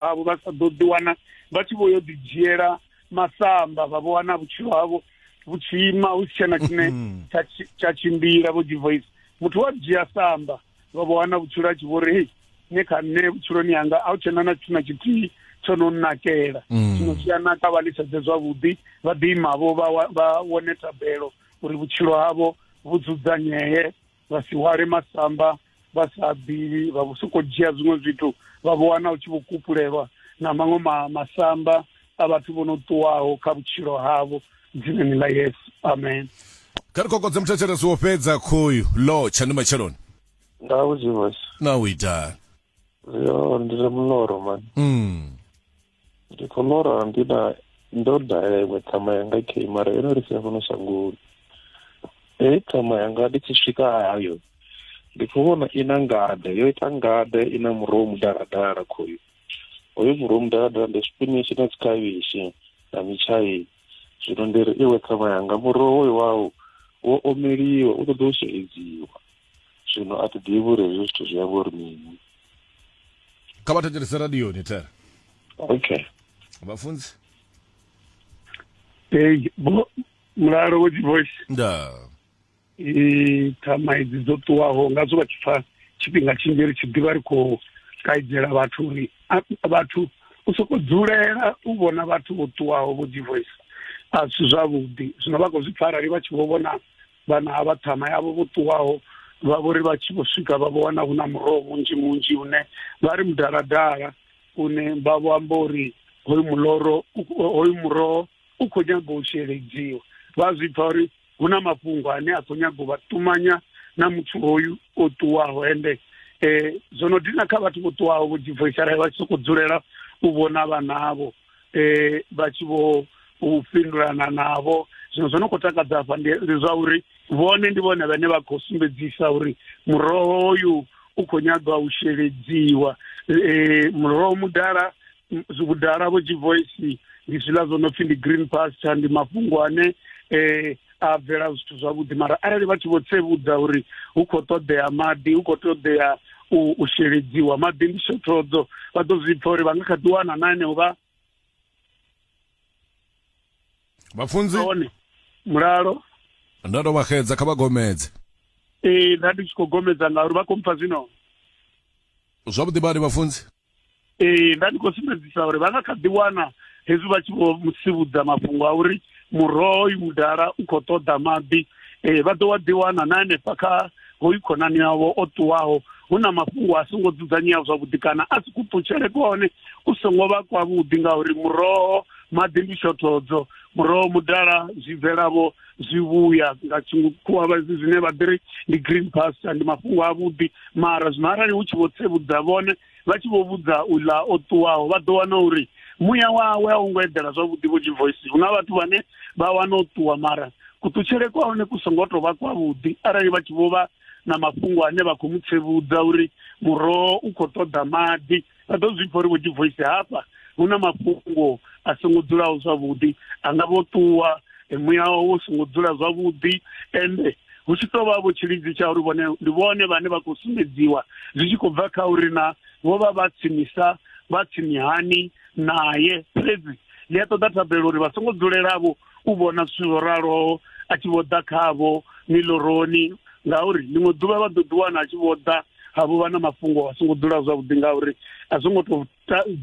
avho vha sa ḓo ḓiwana vha tshi vho yo ḓidzhiela masamba vha vho wana vhutshilo havho vhu tshi ima hu si tshena tshine mm-hmm. tsha tshimbila vho divoice muthu wa dzhia samba vha vho wana vhutshilo a tshi vho ri hei ne kha nṋe vhutshiloni yanga a u tshena na tshithu na tshithihi tsho no nakela mm. zwino zwi a naka vha litshedze zwavhuḓi vha ḓiimavho vha wane tabelo uri vhutshilo havho vhu dzudzanyee vha si hwale masamba vha sa bili vha vho sokou dzhia zwiṅwe zwithu vha vho wana u tshi vho kupulelwa na maṅwe ma masamba a vhathu vho no ṱuwaho kha vhutshilo havho dzinani ḽa yesu amen kha ri kokodze muthetshelesi wo fhedza khoyu lo tsha ndi matsheloni nga vhudzivhasi na u itani yo ndi re muloro mani mm. ndi khou lora ndi na ndo dalela iṅwe ṱhama yanga kei mara yo no ri sia fhano shangoni heyi ṱhama yanga ndi tshi swika hayo ndi khou vhona i na ngade yo ita ngade i na muroho mudaladala khoyu hoyu muroho mudaladala ndi swipinishi na dzikhavhishi na mitshaini zwino ndi ri iwe ṱhama yanga muroho hoyu wau wo omeliwa u ṱoḓa u sheledziwa zwino a thi ḓivhi uri hezwi zwithu zwi amba uri mini kha vha thetshelese radioni tere okay vhafunzi ei bo mulalo wo dzivoice nda thama idzi dzo ṱuwaho nga zwo vha tshi pfa tshifhinga tshinzhi ri tshi ḓivha ri khou kaidzela vhathu uri vhathu u soko dzulela u vhona vhathu vho ṱuwaho vho dzivoice a si zwavhuḓi zwino vha khou zwi pfa arali vha tshi vho vhona vhana ha vhaṱhama yavho vho ṱuwaho vha vho ri vha tshi vho swika vha vho wana hu na muroho munzhi munzhi une vha ri mudaladala une vha vho amba uri hoyu muloro hoyu muroho u khou nyaga u sheledziwa vha zwi pfa uri hu na mafhungo ane a khou nyaga u vha ṱumanya na muthu hoyu o ṱuwaho ende um zwo no dina kha vhathu vho ṱuwaho vho jibvoisala vha tshi sokou dzulela u vhona vhanavho eh vha tshi vho u fhindulana navho zwino zwo no khou takadza hafha ndi zwa uri vhone ndi vhone vhane vha khou sumbedzisa uri muroho hoyu u khou nyagwa u sheledziwa eh muroho mudala vhudala vho tshi voice ndi zwiḽa zwo no pfhi ndi green pasture ndi mafhungo ane eh a bvela zwithu zwavhuḓi mara arali vha tshi vho tsevhudza uri hu khou ṱoḓea maḓi hu khou ṱoḓea u sheledziwa maḓi ndi shothodzo vha ḓo zwi pfa uri vha nga kha ḓi wana na heneo vha vhafunzi hone mulalo nda tou vha xedza kha vha gomedze ee nda ndi tshi khou gomedza ngauri vha khou mpha zwino zwavhuḓi badi vhafunzi ee nda ndi khou sumbedzisa uri vha nga kha ḓi wana hezwi vha tshi vho musivhudza mafhungo a uri muroho uyu mudala u khou ṱoḓa maḓi um vha ḓo wa ḓi wana na hanefha kha hoyu khonani yavho o ṱuwaho hu na mafhungo a songo dzudzanyea zwavhuḓi kana a si kuṱutshele kwone ku songo vha kwavhuḓi ngauri muroho maḓi ndi shothodzo muroho mudala zwi bvelavho zwivhuya nga tshikhuwa vhadzi zwine vha ḓiri ndi green pasture ndi mafhungo a vhuḓi mara zwino arali hu tshi vho tsevhudza vhone vha tshi vho vhudza uḽa o ṱuwaho vha ḓo wana uri muya wawe a u ngo eḓela zwavhuḓi vho dzi voice hu na vhathu vhane vha wana o ṱuwa mara kuṱutshele kwa hone ku songo tou vha kwavhuḓi arali vha tshi vho vha na mafhungo ane vha khou mu tsevhudza uri muroho u khou ṱoḓa maḓi vha ḓo zwi pfa uri vho divoisi hafha hu na mafhungo a songo dzulaho zwavhuḓi a nga vho ṱuwa muya wawe wo songo dzula zwavhuḓi ende hu tshi tou vha vho tshilidzi tsha uri vhone ndi vhone vhane vha khou sumbedziwa zwi tshi khou bva kha uri na vho vha vha tsinisa vha tsini hani naye fhedzi ndi a ṱoḓa thabelo uri vha songo dzulela vho u vhona zwithu zwo raloho a tshi vho ḓa khavho miloroni ngauri ḽiṅwe ḓuvha vha ḓo ḓi wana a tshi vho ḓa ha vho vha na mafhungo a songo dzula zwavhuḓi ngauri a songo to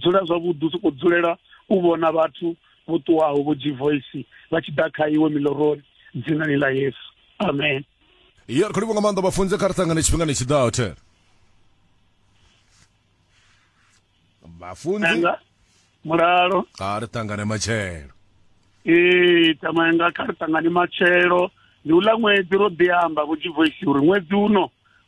dzula zwavhuḓi u soko dzulela u vhona vhathu vho ṱuwaho vho g voice vha tshi ḓa kha iwe miloroni dzinani ḽa yesu amen ya ri khou livho nga maanḓa vhafunze kha ri ṱangane tshifhingani tshi ḓaho there vhafunzi Nanga, mulalo kha ri ṱangane matshelo ee tsamaya nga kha ri ṱangane matshelo ndi uḽa ṅwedzi ro ḓi amba vho jivoisi uri ṅwedzi uno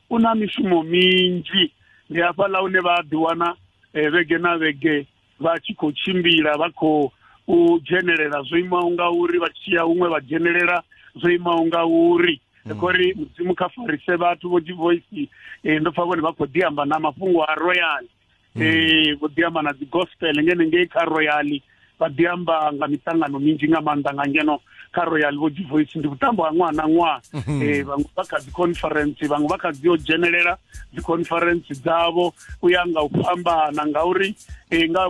u na mishumo minzhi ndi hafhaḽa hune vha a ḓiwana eh, vhege na vhege vha tshi khou tshimbila vha khou u dzhenelela zwo imaho nga uri vha tshi ya huṅwe vha dzhenelela zwo imaho nga uri mm. khori mudzimu kha farise vhathu vho divoisi eh, ndo pfa vhone vha khou ḓi amba na mafhungo a royal mm. eh, vho ḓi amba na dzi gospel ngene ngei kha royal vha ḓi amba nga miṱangano minzhi nga maanḓa nga ngeno kha royal vho dzi voice ndi vhutambo ha ṅwaha na ṅwaha um mhm. eh, vhaṅwe vha kha dzi conference vhaṅwe vha kha dzi yo dzhenelela dzi conference dzavho u ya nga u fhambana ngauri um nga